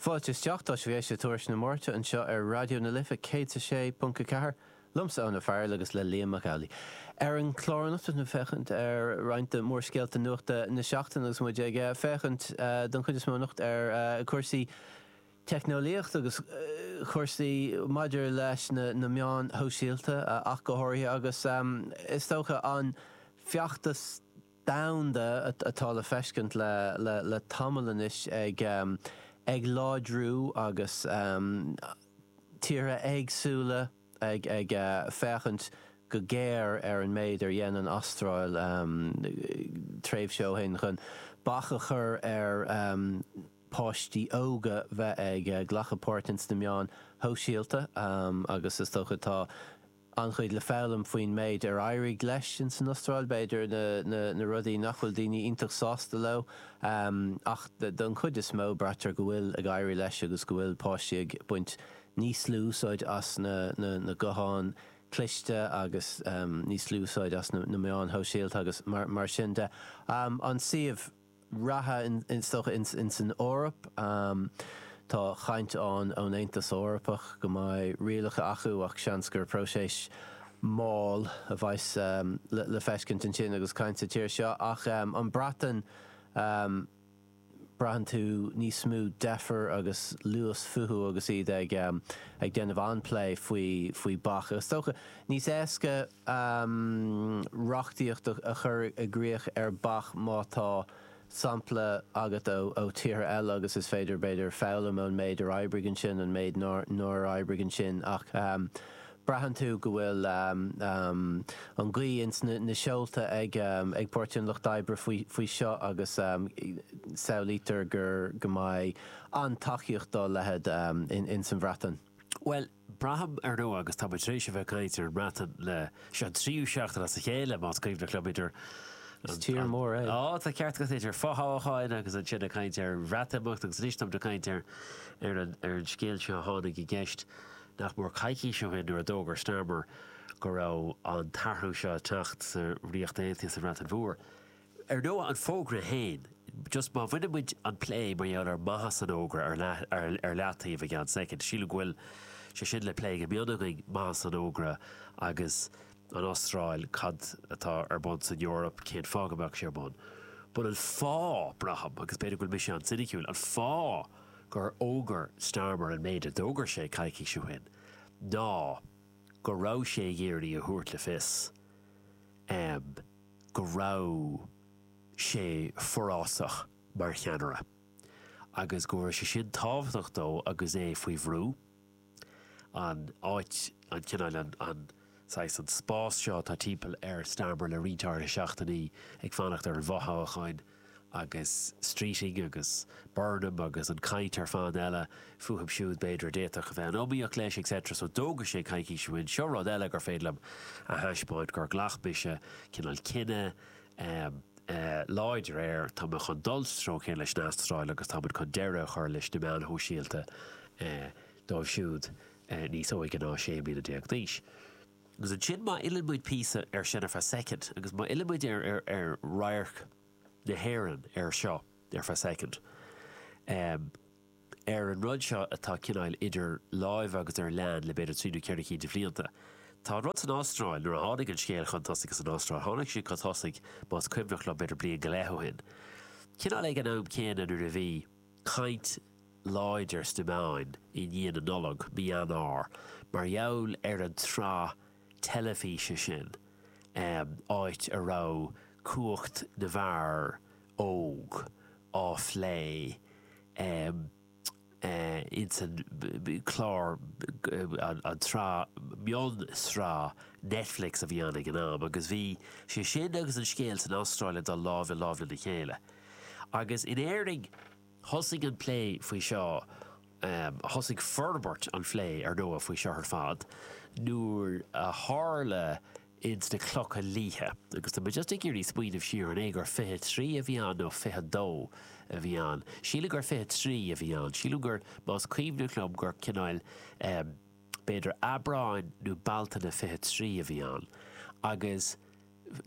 Fáilte isteach, tá sibh ag éisteacht le Tuairisc na Máirte anseo ar Raidió na Life 106.4, liomsa Eoin Ó Fearghail agus le Liam Mac Amhlaigh. Ar an chlár anocht beimid ag féachaint ar roinnt de mhórscéalta nuachta na seachtaine agus muid ag féachaint don chuid is mó anocht ar chúrsaí teicneolaíochta agus cúrsaí maidir leis na meáin shóisialta ach go háirithe agus is dócha an feachtas domhanda atá le feiscint le tamall anois ag láidriú agus tíortha éagsúla ag féachaint go géar ar an méid ar dhein an Astráil tréimhse ó shin chun bac a chur ar pháistí óga bheith ag glacadh páirt ins na meáin shóisialta agus is dócha tá an-chuid le foghlaim faoin méid ar éirigh leis in san Astráil, b'fhéidir na rudaí nach bhfuil daoine iontach sásta leo, ach don chuid is mó braitear go bhfuil ag éirí leis agus go bhfuil páistí ag baint níos lú úsáid as na gutháin chliste agus níos lú úsáid as na meáin shóisialta agus mar sin de. An suíomh. reatha is dócha in san Eoraip. Tá caint ann ón Aontas Eorpach go mbeidh rialacha acu ach seans gur próiseas mall a bheidh le feiscint ansin agus caint sa tír seo. Ach an Breatain braitheann tú níos mó deifir agus luas fúthu agus iad ag déanamh an-phlé faoi bac. Is dócha níos éasca. um reachtaíocht a chur i gcrích ar bac má tá sampla agat ó tíortha eile agus is féidir b'fhéidir foghlaim ón méid ar oibrigh ansin, an méid nár oibrigh ansin ach um braitheann tú go bhfuil um an ghaoth ins na seolta ag um ag Páirtí an Lucht Oibre faoi faoi seo agus um samhlaítear gur go mbeidh an-tacaíocht dá leithéid um ins an Bhreatain. Bhuel, Braithim, ar ndóigh, agus tá muid tar éis a bheith ag caint ar an mBreatain le, seo an tríú seachtain as a chéile, más cuimhin liom, idir, tá ceart agat, idir fothoghcháin agus ansin ag caint ar Bhreatimeacht agus anois táimid ag caint ar, ar an, ar an scéal seo a tháinig i gceist nach mór coicís ó shin nuair a d'fhógair Starmer go raibh an t-athrú seo ag teacht sa Ríocht Aontaithe, sa Bhreatain Mhór. Ar ndóigh an fógra féin, just má bhaineann muid an plé mar gheall ar maitheas an fhógra ar leathtaobh ar feadh soicind, sílim go bhfuil sé sin le plé go mion againn, maitheas an fhógra agus an Astráil, cad atá ar bun san Eoraip, cén fáth go mbeadh sé ar bun. But an fáth, braithim, agus b'fhéidir go bhfuil mise an-soiniciúil, an fáth gur fhógair Starmer an méid a d'fhógair sé coicís ó shin ná go raibh sé ag iarraidh a thabhairt le fios, go raibh sé forásach mar cheannaire agus go raibh sé sin tábhachtach dó agus é faoi bhrú. An áit, an cineál, an saghas, an spás seo atá timpeall ar Starmer le roinnt áirithe seachtainí ag fanacht ar an bhfothoghchán, agus Streeting agus Burnham agus an caint ar fad eile fúthu siúd b'fhéidir a d'fhéadfadh a bheith in iomaíocht leis etc. So d'fhógair sé coicís ó shin, seo rud eile gur féidir liom a thaispeáint gur ghlac mise cineál cinneadh láidir air, tá mé chun dul sa treo céanna leis an Astráil agus táimid chun deireadh a chur leis na meáin shóisialta dóibh siúd níos óige ná 16 bliana d'aois. Agus ansin má fhillimid píosa ar sin ar feadh soicind, agus má fhillimid ar radharc na hÉireann ar seo ar feadh soicind, ar an rud seo atá cineál idir lámha agus ar leanúint le b'fhéidir trí nó ceithre cinn de bhlianta. Tá an rud san Astráil, nuair a tháinig an scéal chun tosaigh as an Astráil, tháinig sé chun tosaigh, más cuimhneach liom, b'fhéidir bliain go leith ó shin. Cineál ag an am céanna nuair a bhí. caint láidir sna meáin i ndiaidh na Nollag, mí Eanáir, mar gheall ar an tsraith teilifíse sin, áit a raibh cumhacht na bhfear óg á phlé ins an clár, an tsraith, mion-sraith Netflix a bhí ann ag an am, agus bhí sé sin agus an scéal san Astráil ag dul lámh i lámh lena chéile. Agus in Éirinn thosaigh an plé faoi seo, thosaigh forbairt an phlé ar ndóigh faoi seo ar fad nuair a tharla ins na Clocha Liatha, agus tá mé just ag iarraidh smaoineamh siar an é gur 23 a bhí ann nó 22 a bhí ann, sílim gur 23 a bhí ann, sílim gur más cuimhneach liom gur cineál b'fhéidir Aibreán nó Bealtaine 23 a bhí ann agus.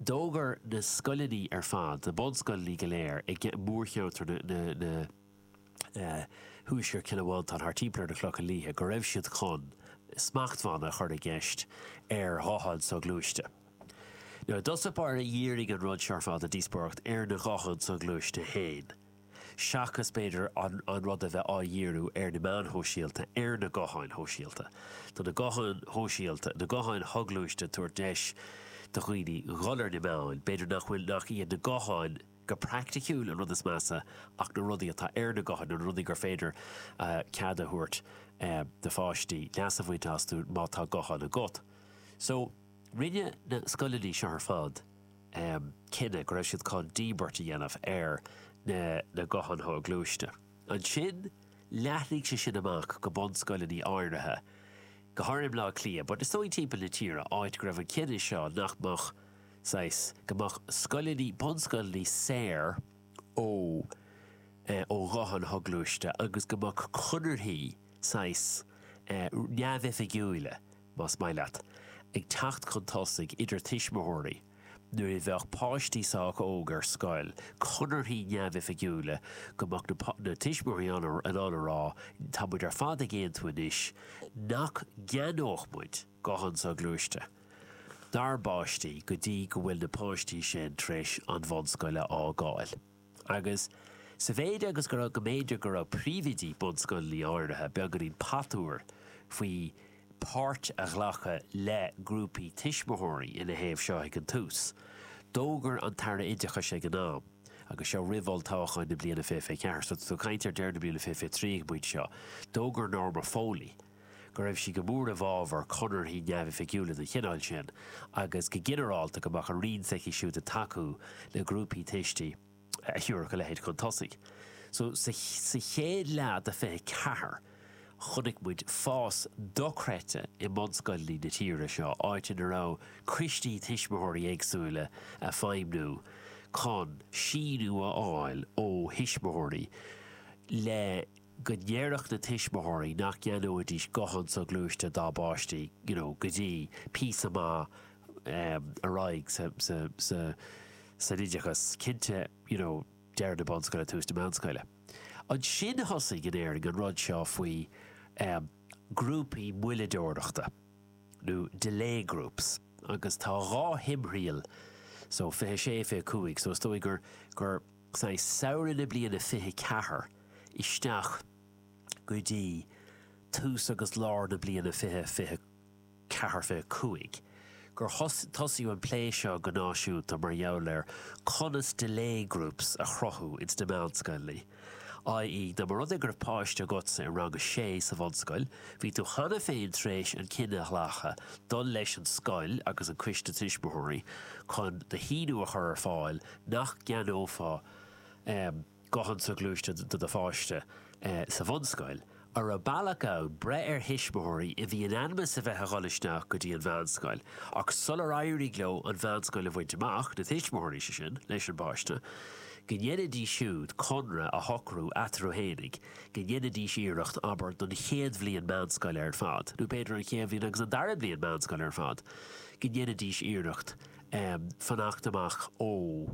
D'fhógair na scoileanna ar fad, na bunscoileanna go léir i mórcheantar na thuaisceart Chill Mhantáin thart timpeall ar na Clocha Liatha go raibh siad chun smachtbhanna a chur i gceist ar ghutháin soghluaiste. Nó i dtosach báire dhírigh an rud seo ar fad an díospóireacht ar na gutháin soghluaiste féin. seachas b'fhéidir an rud a bheith á dhíriú ar na meáin shóisialta, ar na gutháin shóisialta. Tá na gutháin shóisialta, na gutháin shoghluaiste ag tabhairt deis do dhaoine dhul ar na meáin, b'fhéidir nach bhfuil, nach iad na gutháin go praiticiúil an rud is measa ach na rudaí atá ar na gutháin, na rudaí gur féidir cead a thabhairt do pháistí leas a bhaint astu má tá guthán agat. So rinne na scoileanna seo ar fad, cinneadh go raibh siad chun díbirt a dhéanamh ar na gutháin shoghluaiste. Ansin leathnaigh sé sin amach go bunscoileanna áirithe, go háirithe i mBleá Cliath, but is dóigh timpeall na tíre, áit go raibh an cinneadh seo nach mbeadh saghas, go mbeadh scoileanna, bunscoileanna saor ó ó ghutháin shoghluaiste agus go mbeadh conarthaí saghas neamhoifigiúila, más maith leat, ag teacht chun tosaigh idir tuismitheoirí nuair a bheadh páistí sách óg ar scoil, conarthaí neamhoifigiúla go mbeadh na tuismitheoirí in ann a rá 'tá muid ar fad ag aontú anois nach gceannódh muid guthán soghluaiste dár bpáistí go dtí go bhfuil na páistí sin tar éis an bhunscoil a fhágáil'. Agus sa mhéid agus go raibh go mb'fhéidir go raibh príomhoidí bunscoileanna áirithe beagáinín patuar faoi páirt a ghlacadh le grúpaí tuismitheoirí ina thaobh seo ag an tús, d'fhógair an tAire Oideachais ag an am, agus seo roimh olltoghchán na bliana 2024, so tá tú ag caint ar deireadh na bliana 2023 ag an bpointe seo, d'fhógair Norma Foley, go raibh sí go mór i bhfábhar conarthaí neamhoifigiúla den chineál sin agus go ginearálta go mbeadh an Roinn s'aici siúd ag tacú le grúpaí tuistí a thiúrfadh a leithéid chun tosaigh. So sa gcéad leath de 24 chonaic muid fás dochreidte i mbunscoileanna na tíre seo, áit ina raibh coistí tuismitheoirí éagsúla ag feidhmiú chun síniú a fháil ó thuismitheoirí le go ndéarfadh na tuismitheoirí nach gceannóidís guthán soghluaiste dá bpáistí you know go dtí píosa maith ar aghaidh sa san oideachas, cinnte you know deireadh na bunscoile tús na meánscoile. Ansin thosaigh in Éirinn an rud seo faoi ghrúpaí moilleadóireachta nó delay groups agus tá dhá thimthriall so 26, 25 so is dóigh gur I samhradh na bliana fiche ceathair isteach go dtí tús agus lár na bliana fiche, fiche ceathair, fiche cúig, gur tosaíodh an plé seo go náisiúnta mar gheall ar conas delay groups a chruthú ins na meánscoileanna, i.e. dá mba rud é go raibh páiste agatsa i rang a sé sa bhunscoil, bhí tú cheana féin tar éis an cinneadh a ghlacadh dul leis an scoil agus an coiste tuismitheoirí chun do shíniú a chur ar fáil nach gceannófá guthán soghluaiste do do pháiste sa bhunscoil, an raibh bealach ann breith ar thuismitheoirí a bhí in ainm is a bheith a dhul isteach go dtí an meánscoil ach sular éirigh leo an mheánscoil a bhaint amach, na tuismitheoirí, sé sin, leis an bpáiste, go ndéanfaidís siúd conradh a shocrú eatarthu fhéinig go ndéanfaidís iarracht, abair, don chéad bhliain meánscoile ar fad, nó b'fhéidir an chéad bhliain agus an dara bliain meánscoile ar fad, go ndéanfaidís iarracht. fanacht amach ó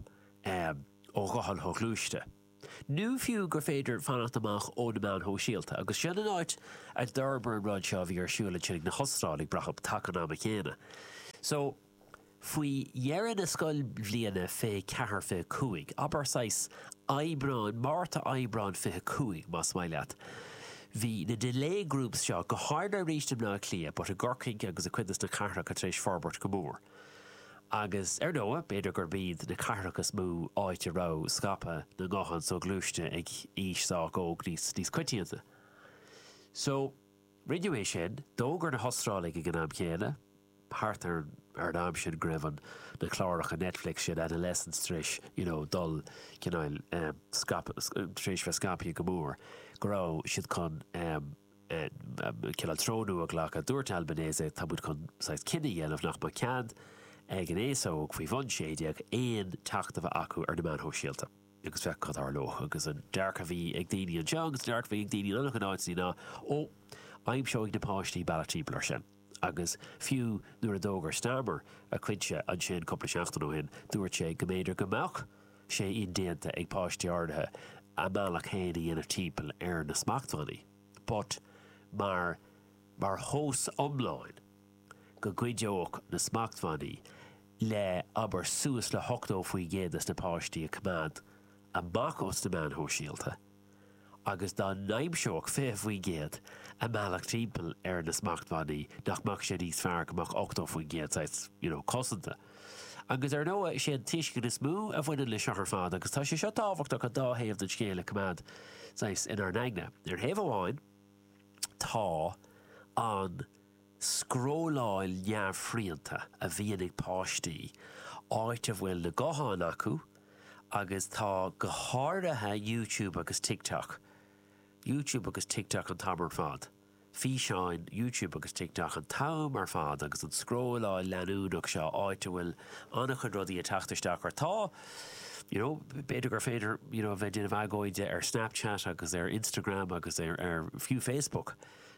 ghuthán soghluaiste, nó fiú gur féidir fanacht amach ó na meáin shóisialta. Agus sin an áit a d'fhorbair an rud seo a bhí ar siúl ansin ag na hOstráiligh, brathaim, taca an ama céanna. So, faoi dheireadh na scoilbhliana, fiche ceathair, fiche cúig, abair saghas Aibreáin, Márta, Aibreán fiche cúig, más maith leat, bhí na delay groups seo, go háirithe arís i mBleá Cliath, but i gCorcaigh agus i cuid de sna cathracha tar éis forbairt go mór. Agus ar ndóigh, b'fhéidir gurb iad na cathracha is mó áit a raibh scaipeadh na nguthán soghluaiste ag aois sách óg níos coitianta. So, rinneadh é sin. D'fhógair na hOstráiligh ag an am céanna, thart ar an am sin go raibh na cláracha Netflix sin, Adolescence, tar éis you know dul cineál, em, scaipeadh, tar éis bheith scaipthe go mór, go raibh siad chun, em, Cineál treo nua a ghlacadh. Dúirt Albanese, tá muid chun saghas cinneadh a dhéanamh nach mbeadh cead ag an aos óg faoi bhun 16 aon teacht a bheith acu ar na meáin shóisialta agus féach cad a tharlóidh. Agus an dearcadh a bhí ag daoine anseo agus an dearcadh a bhí ag daoine in an-chuid áiteanna ná, 'Ó, aimseoidh na páistí bealach timpeall air sin. agus fiú nuair a d'fhógair Starmer a cuidse ansin cúpla seachtain ó shin, dúirt sé go mb'fhéidir go mbeadh sé indéanta ag páistí áirithe a mbealach féin a dhéanamh timpeall ar na smachtbhannaí. But mar mar thomhas iomlán go gcuideodh na smachtbhannaí le abair suas le 80% de sna páistí a coimeád amach os na meáin shóisialta, agus dá n-aimseodh 20% a mbealach timpeall ar na smachtbhannaí nach mbeadh sé níos fearr go mbeadh 80% saghas, you know, cosanta. Agus ar ndóigh sé an tuiscint is mó a bhaineann le seo ar fad agus tá sé seo tábhachtach an dá thaobh den scéal a coimeád saghas inár n-aigne. Ar thaobh amháin tá an. scrolláil neamhshrianta a bhíonn ag páistí, áit a bhfuil na gutháin acu agus tá go háirithe YouTube agus TikTok, YouTube agus TikTok an t-am ar fad, físeáin YouTube agus TikTok an t-am ar fad agus an scrolláil leanúnach seo áit a bhfuil an-chuid rudaí ag teacht isteach ort. Tá you know b'fhéidir gur féidir you know a bheith ag déanamh agóide ar Snapchat agus ar Instagram agus ar ar fiú Facebook.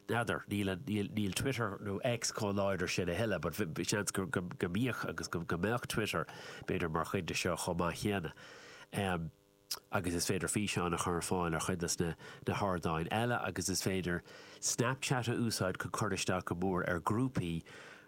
N'fheadar, níl Twitter nó X chomh láidir sin a thuilleadh, but seans go mbíodh agus go mbeadh Twitter b'fhéidir mar chuid de seo chomh maith céanna. Agus is féidir físeáin a chur ar fáil ar chuid de sna hardáin eile agus is féidir Snapchat a úsáid chun cur isteach go mór ar ghrúpaí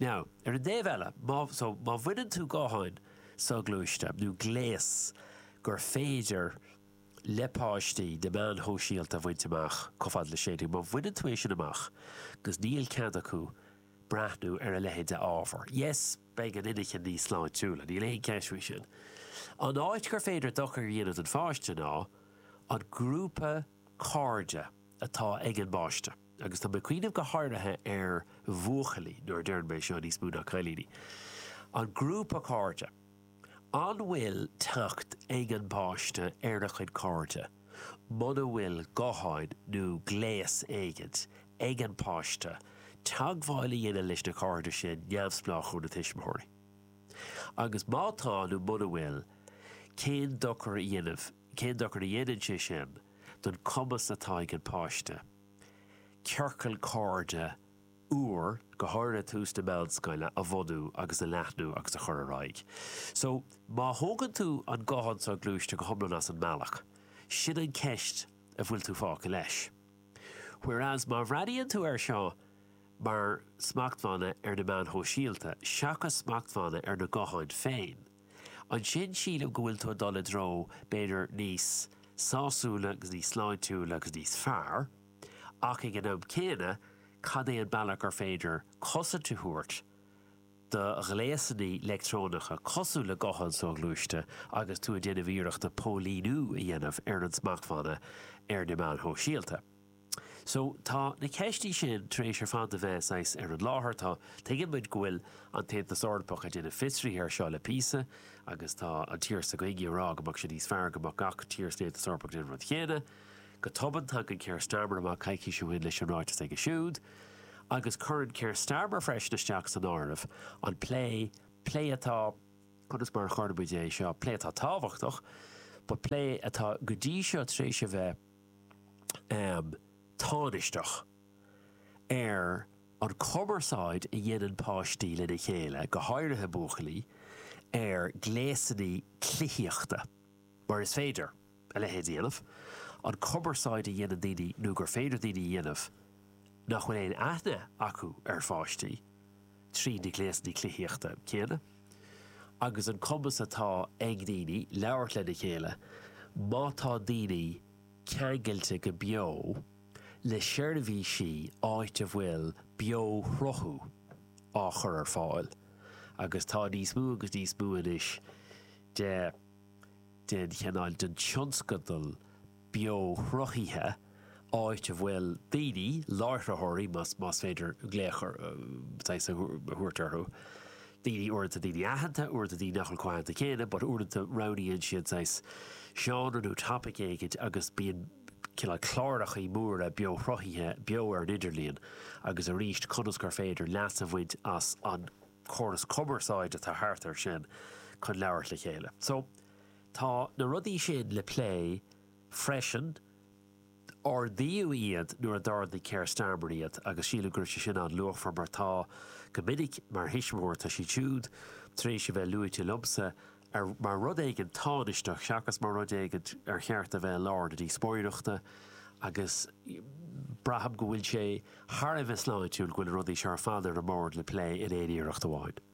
Now, ar an dtaobh eile, má, so, má bhaineann tú gutháin soghluaiste, nó gléas gur féidir le páistí na meáin shóisialta a bhaint amach chomh fada le sé déag, má bhaineann tú é sin amach agus níl cead acu breathnú ar a leithéid de ábhar, yes, beidh an inchinn níos sláintiúla, níl aon cheist faoi sin. An áit gur féidir dochar a dhéanamh don pháiste ná an grúpa, cairde atá ag an bpáiste agus tá mé ag cuimhneamh go háirithe ar bhuachaillí nuair a deireann mé seo níos mó ná cailíní. An grúpa cairde. An bhfuil teacht ag an bpáiste ar a chuid cairde? Muna bhfuil gutháin nó gléas éigin ag an bpáiste teagmháil a dhéanamh leis na cairde sin neamhspleách ó na tuismitheoirí? Agus má tá nó muna bhfuil, cén dochar a dhéanamh? Cén dochar a dhéanann sé sin don cumas atá ag an páiste ciorcal cairde úr, go háirithe tús na meánscoile, a bhunú agus a leathnú agus a chur ar aghaidh? So, má thógann tú an guthán soghluaiste go hiomlán as an mbealach, sin an cheist a bhfuil tú fágtha leis. Whereas má bhreathnaíonn tú air seo mar smachtbhanna ar na meáin shóisialta seachas smachtbhanna ar na gutháin féin, Ansin sílim go bhfuil tú ag dul i dtreo b'fhéidir níos sásúla agus níos sláintiúla agus níos fearr, ach ag an am céanna cad é an bealach gur féidir cosaint a thabhairt do ghléasanna leictreonacha cosúil le gutháin soghluaiste agus tú ag déanamh iarrachta póilíniú a dhéanamh ar an smachtbhanna ar na meáin shóisialta. So, tá na ceistí sin tar éis ar fad a bheith saghas ar an láthair. Tá, tuigeann muid go bhfuil an tAontas Eorpach ag déanamh fiosraithe ar seo le píosa agus tá an tír s'againne ag rá go mbeadh sé níos fearr go mbeadh gach tír san Aontas Eorpach ag déanamh an rud céanna. Go tobann tagann Keir Starmer amach coicís ó shin leis an ráiteas aige siúd agus cuireann Keir Starmer freisin isteach san áireamh an plé, plé atá, conas mar a chuirfeadh muid é seo, plé atá tábhachtach but plé atá go dtí seo tar éis a bheith, tánaisteach ar an chumarsáid a dhéanann páistí lena chéile, go háirithe buachaillí, ar ghléasanna cluichíochta, mar is féidir a leithéid a dhéanamh, an cumarsáid a dhéanann daoine nó gur féidir daoine a dhéanamh nach bhfuil aon aithne acu ar pháistí. Trí na gléasanna cluichíochta céanna agus an cumas atá ag daoine labhairt lena chéile, má tá daoine ceangailte go beo le seirbhísí áit a bhfuil beo-shruthú á chur ar fáil, agus tá níos mó agus níos mó anois de, den chineál, den tionscadal beoshruthaithe, áit a bhfuil daoine, láithreoirí, más más féidir glaoch a a thabhairt orthu, daoine uaireanta daoine aitheanta, uaireanta daoine nach bhfuil chomh aitheanta céanna, but uaireanta roghnaíonn siad saghas seánra nó topic éigin agus bíonn cineál clárachaí móra beoshruthaithe, beo ar an idirlíon, agus arís conas gur féidir leas a bhaint as an córas cumarsáid atá thart air sin chun labhairt le chéile. So, Tá na rudaí sin le plé freisin. Ardaíodh iad nuair a d'ardaigh Keir Starmer iad agus sílim go raibh sé sin an-luachmhar mar tá, go minic, mar thuismitheoir, tá siad siúd tar éis a bheith luaite liomsa mar rud éigin tánaisteach seachas mar rud éigin ar cheart a bheith i lár na díospóireachta agus braithim go bhfuil sé thar a bheith sláintiúil go bhfuil na rudaí seo ar fad ar an mbord le plé in aon iarracht amháin.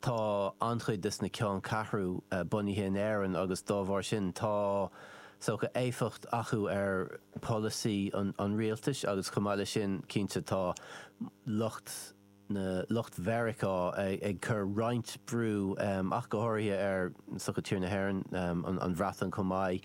Tá an-chuid des na ceanncheathrú bunaithe in Éirinn agus dá bharr sin tá sórt éifeacht acu ar pholasaí an rialtais agus chomh maith leis sin cinnte tá lucht na lucht Mheiriceá ag cur roinnt brú ach go háirithe ar sórt tír na hÉireann, an Bhreatain chomh maith.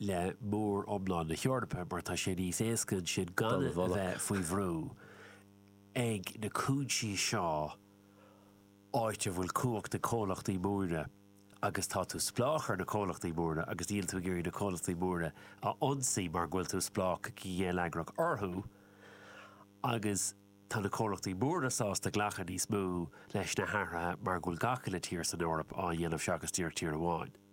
le mór iomlán na hEorpa mar tá sé níos éasca ansin gan a bheith faoi bhrú ag na cúinsí seo áit a bhfuil cumhacht ag comhlachtaí móra agus tá tú spleách ar na comhlachtaí móra agus níl tú ag iarraidh na comhlachtaí móra a ionsaí mar go bhfuil tú spleách go geilleagrach orthu agus tá na comhlachtaí móra sásta glacadh níos mó leis na hathruithe mar go bhfuil gach uile tír san Eoraip á dhéanamh seachas díreach tír amháin.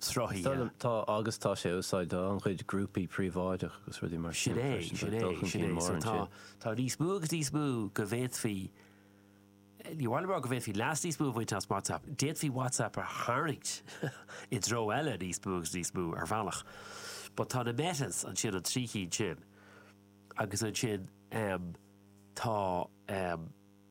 sruthaithe. Tá, agus tá sé á úsáid do an-chuid grúpaí príobháideach agus rudaí mar sin freisin. Tá dul chun cinn mór ansin. Tá níos mó agus níos mó go bhféadfaí, ní hamháin go bhféadfaí leas níos mó a bhaint as WhatsApp, d'fhéadfaí WhatsApp a tharraingt i dtreo eile níos mó agus níos mó ar bhealach. But tá na Metas ansin, an trí cinn sin, agus ansin tá.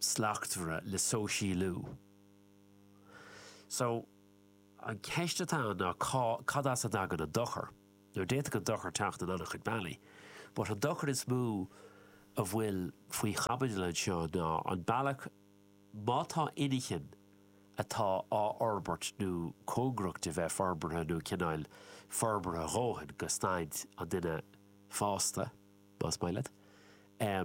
slachtmhaire le sóisialú. So, an ceist atá ann ná cá, cad as a dtagann an dochar? Now, d'fhéadfadh an dochar teacht in an-chuid bealaí, but an dochar is mó a bhfuil faoi chaibidil anseo ná an bealach, má tá inchinn atá á fhorbairt nó cóngarach do bheith forbartha nó cineáil forbartha dhóthain go staid an duine fásta, más maith leat, eh,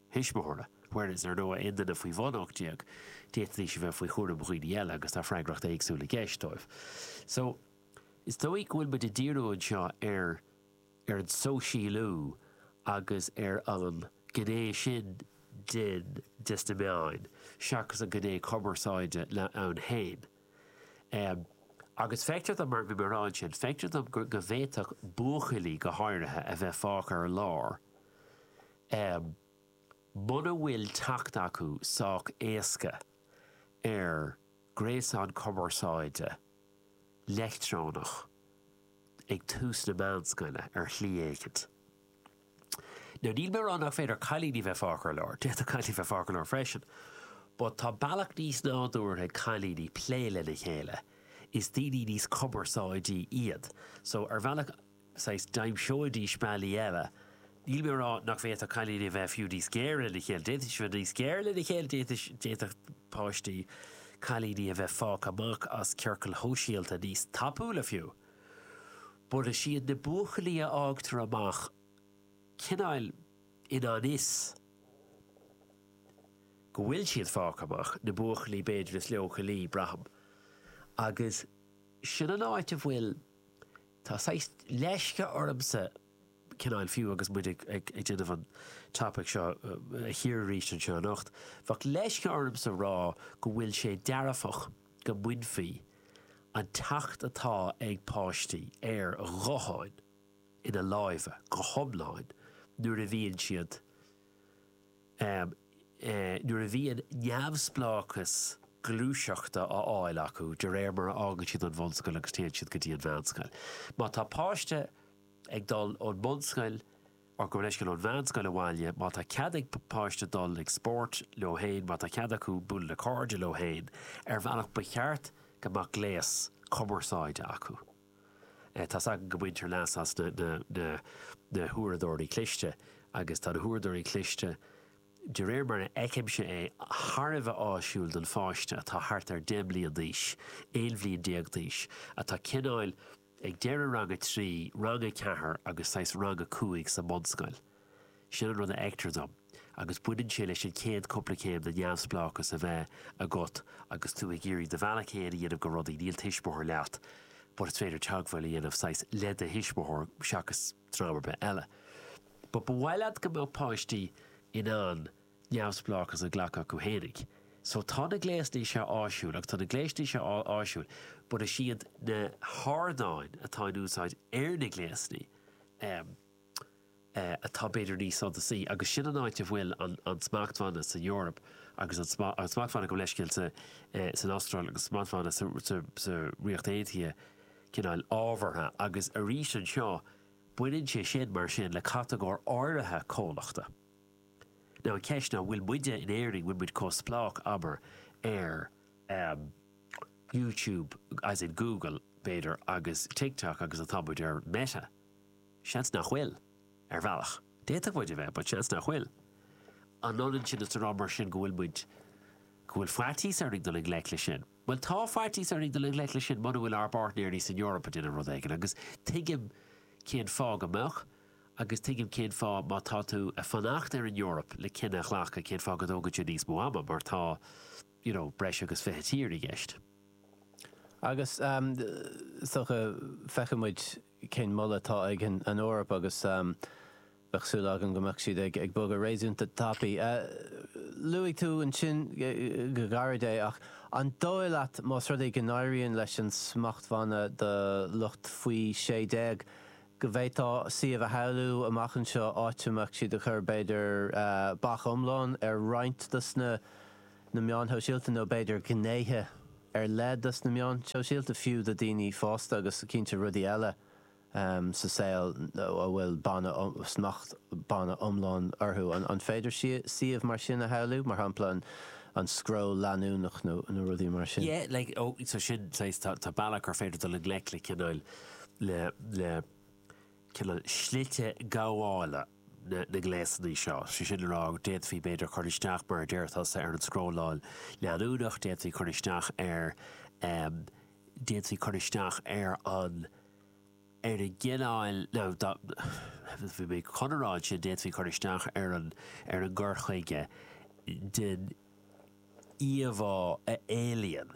thuismitheora, whereas ar ndóigh aon duine faoi bhun 18, d'fhéadfaidís a bheith faoi chúram dhaoine eile agus tá freagracht éagsúil i gceist dóibh. So, is dóigh go bhfuil muid ag díriú anseo ar ar an sóisialú agus ar an gné sin den des na meáin seachas an gné cumarsáide ann féin. Em agus feictear dom mar bhí mé a rá ansin, feictear dom go go bhféadfadh buachaillí go háirithe a bheith fágtha ar lár Em. muna bhfuil teacht acu sách éasca ar ghréasán cumarsáide leictreonach ag tús na meánscoile ar shlí éigint. Now níl mé ag rá nach féidir cailíní bheith fágtha ar lár, d'fhéadfadh cailíní bheith fágtha ar lár freisin, but tá bealach níos nádúrtha ag cailíní plé lena chéile, is daoine níos cumarsáidí iad, so ar bhealach, saghas d'aimseoidís bealaí eile. Níl mé a rá nach bhféadfadh cailíní a bheith fiú níos géire lena chéile, d'fhéadfaidís a bheith níos géire lena chéile, d'fhéadfaidís, d'fhéadfadh páistí, cailíní a bheith fágtha amach as ciorcail shóisialta níos tapúla fiú. But is iad na buachaillí a fhágtar amach cineáil i ngan fhios go bhfuil siad fágtha amach, na buachaillí b'fhéidir is leochailí, braithim. Agus sin an áit a bhfuil. Tá saghas leisce ormsa cineáil fiú agus muid ag déanamh an topaic seo a chíoradh arís anseo anocht, bheadh leisce ormsa rá go bhfuil sé dearfach go mbainfí an teacht atá ag páistí ar ghutháin ina lámha go hiomlán nuair a bhíonn siad Ámh, nuair a bhíonn neamhspleáchas gluaiseachta á fháil acu de réir mar a fhágann siad an bhunscoil agus téann siad go dtí an mheánscoil. Má tá páiste ag dul ón mbunscoil or go háirithe ón mheánscoil abhaile, má tá cead ag páiste dul ag spórt leo féin, má tá cead acu bualadh le cairde leo féin, ar bhealach ba cheart go mbeadh gléas cumarsáide acu. Tá's agam go mbaintear leas as na huaireadóirí cliste agus tá na huaireadóirí cliste, de réir mar a fheicimse é, thar a bheith áisiúil don pháiste atá thart ar 10 mbliana d'aois, 11 bhliain d'aois, atá cineáil ag deireadh rang a trí, rang a ceathair agus saghas rang a cúig sa mbunscoil. Sin an rud a fheictear dom agus baineann sé leis an chéad cúpla céim de neamhspleáchas a bheith agat agus tú ag iarraidh do bhealach fhéin a dhéanamh go rudaí, níl tuismitheoir leat but is féidir teagmháil a dhéanamh saghas le do thuismitheoir seachas dream ar bith eile. But ba mhaith leat go mbeadh páistí in ann neamhspleáchas a ghlacadh chucu fhéinig. So tá na gléasanna seo áisiúil agus tá na gléasanna seo áisiúil but is iad na hardáin atá in úsáid ar na gléasanna, em, atá b'fhéidir níos suntasaí agus sin an áit a bhfuil an smachtbhanna san Eoraip agus an smachtbhanna gabh mo leithscéal san Astráil agus smachtbhanna sa Ríocht Aontaithe cineál ábhartha agus arís anseo baineann sé sin mar sin le catagóir áirithe comhlachta. Now an ceist ná bhfuil muide in Éirinn bhfuil muid chomh spleách abair ar YouTube as in Google b'fhéidir agus TikTok agus atá muid ar Meta. Seans nach bhfuil. Ar bhealach, d'fhéadfadh muid a bheith, but seans nach bhfuil. An ionann sin is a rá mar sin go bhfuil muid, go bhfuil faitíos orainn dul i ngleic leis sin? Bhuel, tá faitíos orainn dul i ngleic leis sin muna bhfuil ár bpáirtnéirí san Eoraip ag déanamh rud éigin agus tuigim cén fáth go mbeadh agus tuigim cén fáth má tá tú ag fanacht ar an Eoraip le cinneadh a ghlacadh cén fáth go dtógann sé níos mó ama mar tá, you know, breis agus fiche tír i gceist. Agus, um, is dócha, feicfidh muid. cén moladh atá ag an Eoraip agus bheadh súil agam go mbeadh siad ag bogadh réasúnta tapaidh. Luaigh tú ansin go gairid é ach an dóigh leat más rud é go n-éiríonn leis an smachtbhanna do lucht faoi sé déag go bhféadfá suíomh a shamhlú amach anseo áit a mbeadh siad ag cur b'fhéidir bac iomlán ar roinnt dos na meáin shóisialta nó b'fhéidir gnéithe ar leith dos na meáin shóisialta, fiú do dhaoine fásta agus cinnte rudaí eile sa saol a bhfuil banna, smachtbhanna iomlán orthu. An féidir suíomh mar sin a shamhlú, mar shampla an scroll leanúnach nó rudaí mar sin? Yeah, like, oh, so sin, saghas, tá, tá bealach gur féidir dul i ngleic le cineál, le, le cineál slite gabhála. na ngléasanna seo. Sé sin le rá d'fhéadfaí b'fhéidir cur isteach, mar a deir tusa, ar an scrolláil leanúnach, d'fhéadfaí cur isteach ar, em, d'fhéadfaí cur isteach ar an, ar an gcineál, ó bhí mé chun a rá ansin, d'fhéadfaí cur isteach ar an, ar an gcur chuige den íomhá a éalaíonn.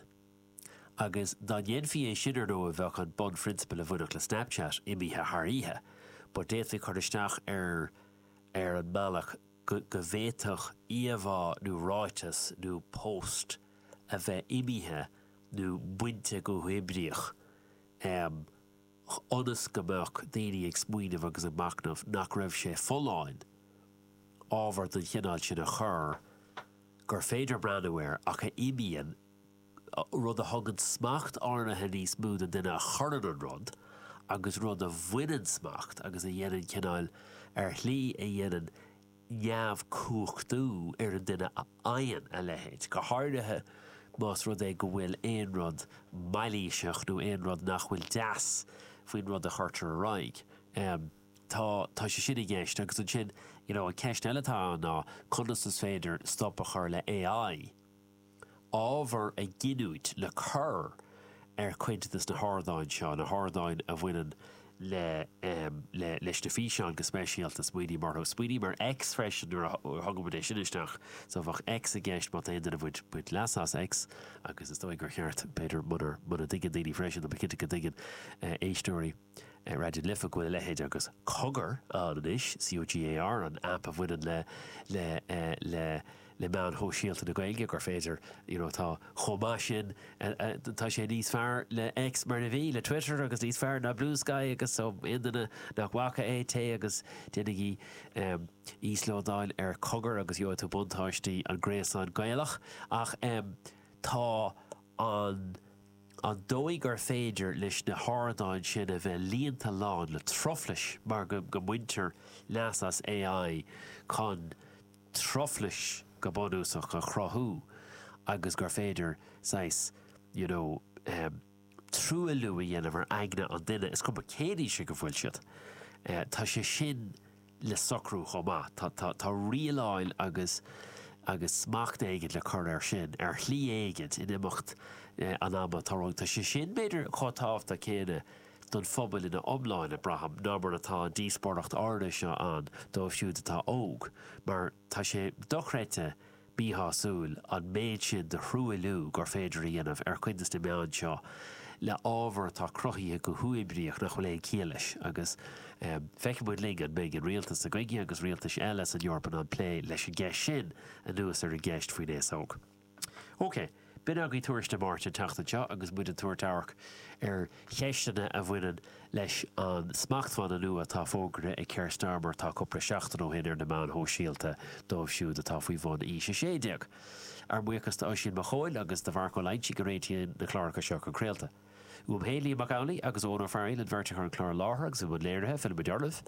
Agus dá ndéanfaí sin, ar ndóigh, bheadh an bunphrionsabal a bhainfeadh le Snapchat imithe thar oíche. But d'fhéadfaí cur isteach air ar an mbealach go bhféadfadh íomhá nó ráiteas nó post a bheith imithe nó bainte go huathoibríoch, ionas go mbeadh daoine ag smaoineamh agus ag machnamh nach raibh sé folláin ábhar den chineál sin a chur gur féidir breathnú air ach a imíonn rud a thugann smacht áirithe níos mó don duine a chuireann an rud agus rud a bhaineann smacht agus a dhéanann cineáil ar shlí a dhéanann neamhcumhachtú ar an duine a fhaigheann a leithéid, go háirithe más rud é go bhfuil aon rud mailíseach nó aon rud nach bhfuil deas faoin rud a chuirtear ar aghaidh. Em, tá, tá sé sin i gceist agus ansin, you know, an ceist eile atá ann ná conas is féidir stop a chur le AI? ábhar a giniúint le cur ar chuid de na hardáin seo, na hardáin a bhaineann le le leis na físeáin go speisialta. Smaoiním orthu. Smaoiním ar X freisin nuair a thugann muid é sin isteach. So bheadh X i gceist má tá aon duine baint leas as X agus is dóigh gur cheart b'fhéidir munar muna dtuigeann daoine freisin tá mé cinnte go dtuigeann éisteoirí Raidió na Life go bhfuil a leithéid agus Cogar ann anois, COGAR, an app a bhaineann le le le. le meáin shóisialta na Gaeilge gur féidir you know tá chomh maith sin tá sé níos fearr le X mar a bhí le Twitter agus níos fearr ná Blue Sky agus so aon duine nach bhfaca é téigí agus déanaigí um, íoslódáil ar cogar agus gheobhaidh tú buntáistí an gréasán Gaelach ach um, tá an an dóigh gur féidir leis na hardáin sin a bheith líonta lán le truflais mar go, go mbaintear leas as AI chun truflais go bunúsach a chruthú agus gur féidir saghas you know truailliú a dhéanamh ar aigne an duine, is cuma cén aois ag a bhfuil siad. Tá sé sin le socrú chomh maith, tá, tá, tá rialáil agus, agus smacht éigin le cur air sin, ar shlí éigin, in imeacht an ama atá romhainn. Tá sé sin, b'fhéidir, chomh tábhachtach céanna don phobal ina iomláine, braithim, ná mar atá an díospóireacht áirithe seo ann dóibh siúd atá óg, mar tá sé dochreidte míshásúil an méid sin de thruailliú gur féidir a dhéanamh ar chuid des na meáin seo le ábhar atá cruthaithe go huathoibríoch nach bhfuil aon chiall leis agus feicfidh muid linn an mbeidh an rialtas seo againne agus rialtais eile san Eoraip ag plé leis an gceist sin anuas ar an gceist faoin aos óg. OK, b'in agaibh Tuairisc na Máirte an tseachtain seo agus muid ag tabhairt amharc ar cheisteanna a bhaineann leis an smachtbhanna nua atá fógraithe ag Keir Starmer tá cúpla seachtain ó shin ar na meáin shóisialta dóibh siúd atá faoi bhun aois 16. Ár mbuíochas d'Oisín Mac Chóil agus do Mharc Ó Loinsigh a réitíonn na cláracha seo chun craolta. Uaim féin, Liam Mac Amhlaigh agus Eoghan Ó Fearghaíl an bheirt a chuir an clár i láthair agus i mbun léirithe, fillfidh muid oraibh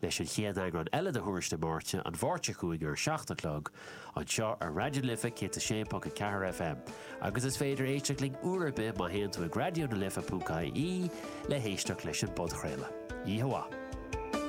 leis an chéad eagrán eile de Thuairisc na Máirte, an Mháirt seo chugainn ar a seacht a chlog, anseo ar Raidió na Life 106.4 FM. Agus is féidir éisteacht linn uair ar bith má théann tú ag raidiónalife.ie le héisteacht leis an bpodchraoladh. Yeehawaah!